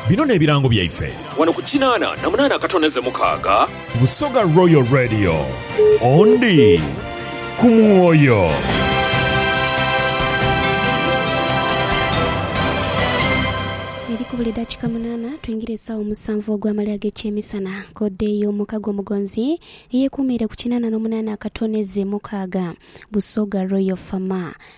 Bino n'ebirango byaife. Wano ku kinaana na munaana akatoneze mukaaga. Busoga Royal Radio. Ondi ku mwoyo. Eri kubula edakika munaana twingire esaawa omusanvu ogwamale ag'ekyemisana. Kode y'omuka gw'omugonzi eyekuumiire ku kinaana n'omunaana akatoneze mukaaga. Busoga Royal Fama.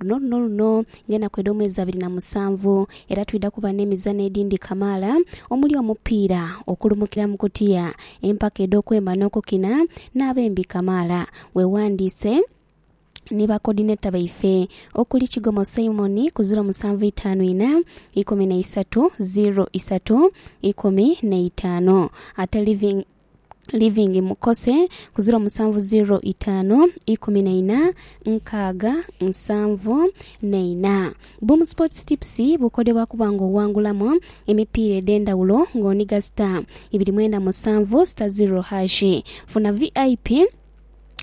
Luno luno luno ng'enaku edh'omwezi abiri na musanvu era twidha kuba n'emizanho edhindhi kamaala omuli omupiira, okulumukira mu kutiya, empaka edh'okwemba n'okukina n'abembi kamaala. Weewandiise ni ba kodineta baife okuli Kigomo Simon ku ziro musanvu itaanu ina, ikumi na isatu, ziro isatu, ikumi na itaanu ate Living Living Mukose ku ziro musanvu ziro itaanu ikumi na ina nkaaga nsanvu na ina. Boom Sports Tips bukodebwa kuba nga owangulamu emipiira edhendawulo nga oniga star ibiri mwenda musanvu star ziro hash. Funa VIP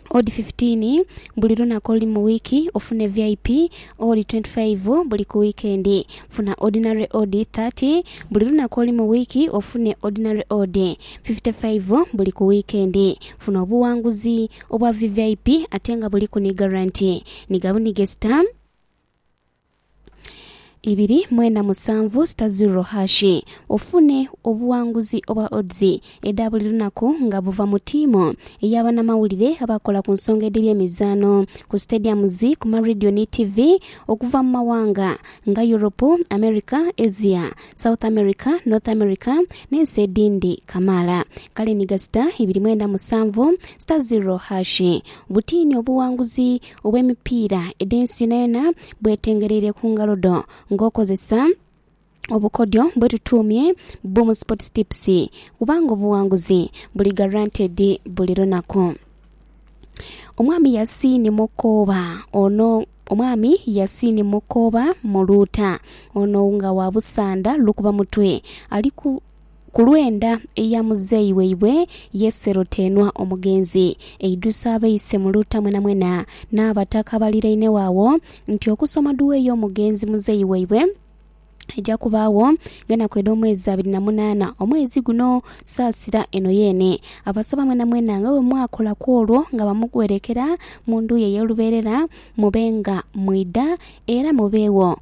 Odi fifitiini buli lunaku oluli mu wiiki ofune VIP. Odi twenti faivu buli ku wiikendi. Funa Ordinary Odi thati buli lunaku oluli mu wiiki ofune Ordinary Odi fifite faivu buli ku wiikendi. Funa obuwanguzi obwa VVIP ate nga buliku ni garanti. Niga bunigesita. ibiri mwenda musanvu sita ziro hashi ofune obuwanguzi obwa odds edha buli lunaku nga buva mu tiimu eya banamawulire abakola ku nsonga edh'ebyemizaano ku stadiums, ku ma radio ni TV okuva mu mawanga nga Europe, America, Asia, South America, North America n'ensi edhindi kamaala. Kale ni gasita ibiri mwenda musanvu sita ziro hashi butiini obuwanguzi. obw'emipiira edh'ensi yonayona bwetengereire ku ngalo dho ng'okozesa obukodyo bwetutuumye Boom Sports Tips kubanga obuwanguzi buli guaranteed buli lunaku. Omwami Yasiini Mukooba ono Omwami Yasiini Mukooba Muluuta ono nga wa Busanda Lukuba Mutwe ali ku Ku lw'enda eya muzeeyi waibwe Yese Rotenwa omugenzi, eidhusa abaise mu luuta mwenamwena, n'abataka abalirainegho agho, nti okusoma duwa ey'omugenzi muzeeyi waibwe eja kubaagho ng'enaku edh'omwezi abiri na munaana omwezi guno. Saasira eno yeene. Abasaba mwenamwena nga bwe mwakola ku olwo nga bamuwerekera mu ndhu ye ey'olubeerera, mube nga mwidha era mubeegho.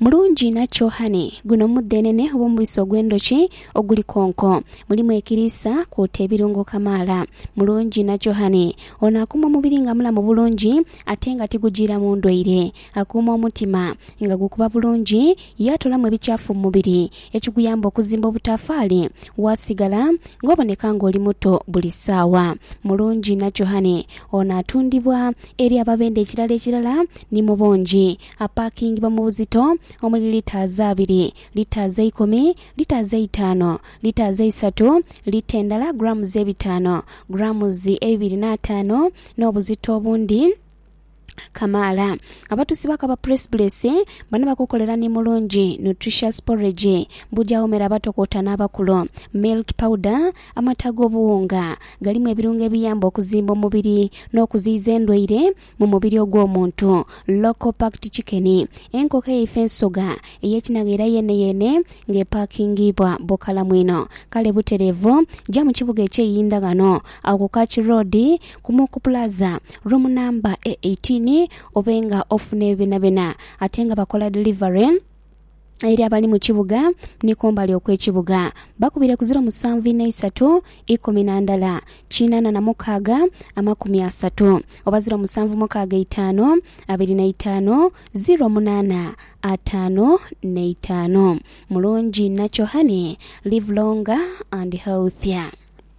Mulungi inha kyo honey. Guno mudhenene oba omubisi ogw'endhoki oguli konko. Mulimu ekiriisa kwota ebirungo kamaala. Mulungi inha kyo honey. Ono akuuma omubiri nga mulamu bulungi ate nga tigujiiramu ndwaire. Akuuma omutima nga gukuba bulungi ye atoolamu ebikyafu mu mubiri ekiguyamba okuzimba obutaafaali waasigala ng'oboneka ng'oli muto buli saawa. Mulungi inha kyo honey. Ono atundibwa eri ababenda ekirala ekirala Ni mu bungi. Apaakingibwa mu buzito omuli litres abiri, litres eikumi, litres eitaanu, litres eisatu, lita endala grams ebitaanu, grams eibiri n'ataanu, n'obuzito obundi kamaala. Abatusi ba Kaba Press Bulesi bano bakukolera ni Mulungi Nutritious Porridge buja womera abato kwota n'abakulu, milk powder, amata ag'obuwunga galimu ebirungo ebiyamba okuzimba omubiri n'okuziyiza endwaire, Mu mubiri ogw'omuntu, local packed chicken, enkoko eyaife ensoga ey'ekinagha era yeeneyeene nga epaakingiibwa bukalamu inho. Kale butereevu ja mu kibuga eky'eiinda ghano agho ku Kachi Road ku Muku Plaza, room number A18 obe nga ofuna ebyo byonabyona ate nga bakola delivery. eri abali mu kibuga ni kumbali okw'ekibuga. Bakubire ku ziro musanvu ina isatu ikumi na ndala kiinana na mukaaga amakumi asatu, oba ziro musanvu mukaaga eitaanu abiri na itaanu, ziro munaana ataanu na itaanu. Mulungi inha kyo honey, live longer and healthier.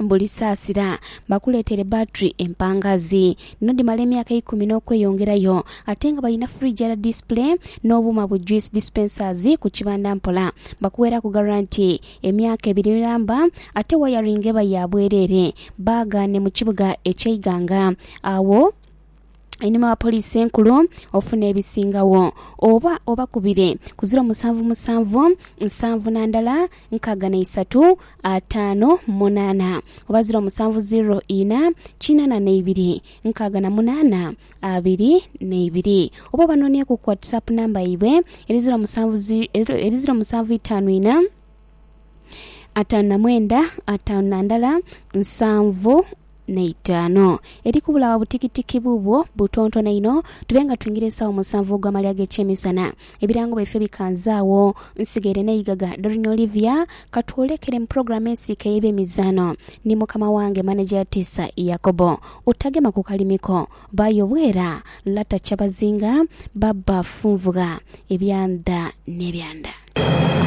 buli saasira bakuleetere battery empangaazi. Dhino dhimala emyaka eikumi n'okweyongerayo ate nga balina frigyara display n'obuuma bu juice dispensers ku kibanda mpola. Bakuweeraku garanti emyaka ebiri miramba ate wayaringi eba ya bwereere baaga ne mu kibuga eky'e Iganga. Agho. einhuma wa Poliisi Enkulu ofune ebisingagho. Oba obakubire ku ziro musanvu musanvu nsanvu na ndala nkaaga na isatu ataano munaana oba ziro musanvu ziro ina kinaana na ibiri nkaaga na munaana abiri na ibiri oba obanonieku ku WhatsApp namba yaibwe eri ziro musanvu zi- eri ziro musanvu itaanu ina Ataanu na mwenda, ataanu na ndala, nsanvu na itaanu. Eri kubula wa butikitiki buubwo butontone inho, tube nga twingira esaawa musanvu ogw'amalya ag'ekyemisana. Ebirango byaife bikanze agho. Nsigaire n'eigaga Doreen Olivia, ka twolekere mu pulogulaamu ensiike ey'ebyemizaano ni mukama wange maneja Yatiisa Yakobo. Otagema ku kalimi ko, Bayo Bwera, Lata Kyabazinga, Baba Funvugha, Ebyandha n'ebyandha.